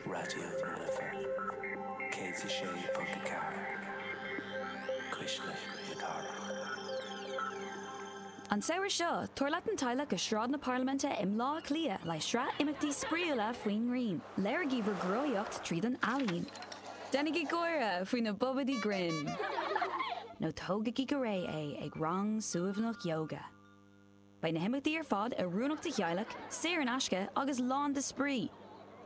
Raidió na Life 106.4 Cuisle na Cathrach. An samhradh seo, tabhair leat an teaghlach go Sráid na Parlaiminte i mBleá Cliath le sraith imeachtaí spraíúla faoin ngrian. Léirigí bhur gcruthaíocht tríd an ealaín. Déanaigí gáire faoi na bobaidí grinn. Nó tógaigí go réidh é ag rang suaimhneach yoga. Beidh na himeachtaí ar fad oiriúnach do theaghlaigh, saor in aisce agus lán de spraoi,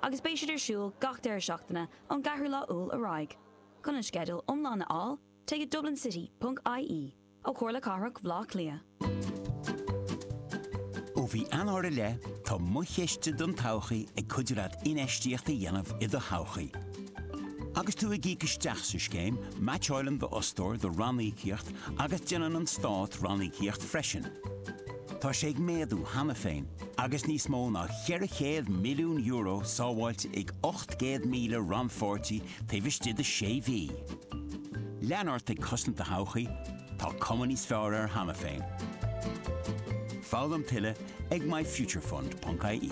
agus beidh siad ar siúl gach deireadh seachtaine ón gceathrú lá Iúil ar aghaidh. Chun an sceideal iomlán a fháil, téigh go dublincity.ie ó Chomhairle Cathrach Bhleá Cliath. Ó mhí Eanáir i leith, tá Mo Chiste don Todhchaí ag cuidiú leat infheistíocht a dhéanamh i do thodhchaí. Agus tú ag íoc isteach sa scéim, meaitseálann d'fhostóir do ranníocaíocht agus déanann an Stát ranníocaíocht freisin. Tá sé ag méadú cheana féin agus níos mó ná €400 milliún sábháilte ag 800,000 rannpháirtí taobh istigh de sé mhí. Lean ort ag cosaint do thodhchaí, tá cuma níos fearr air cheana féin. Foghlaim tuilleadh ag myfuturefund.ie.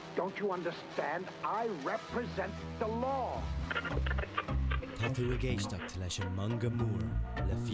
Don't you understand I represent the law? Tá tú ag éisteacht leis an Manga Mór le.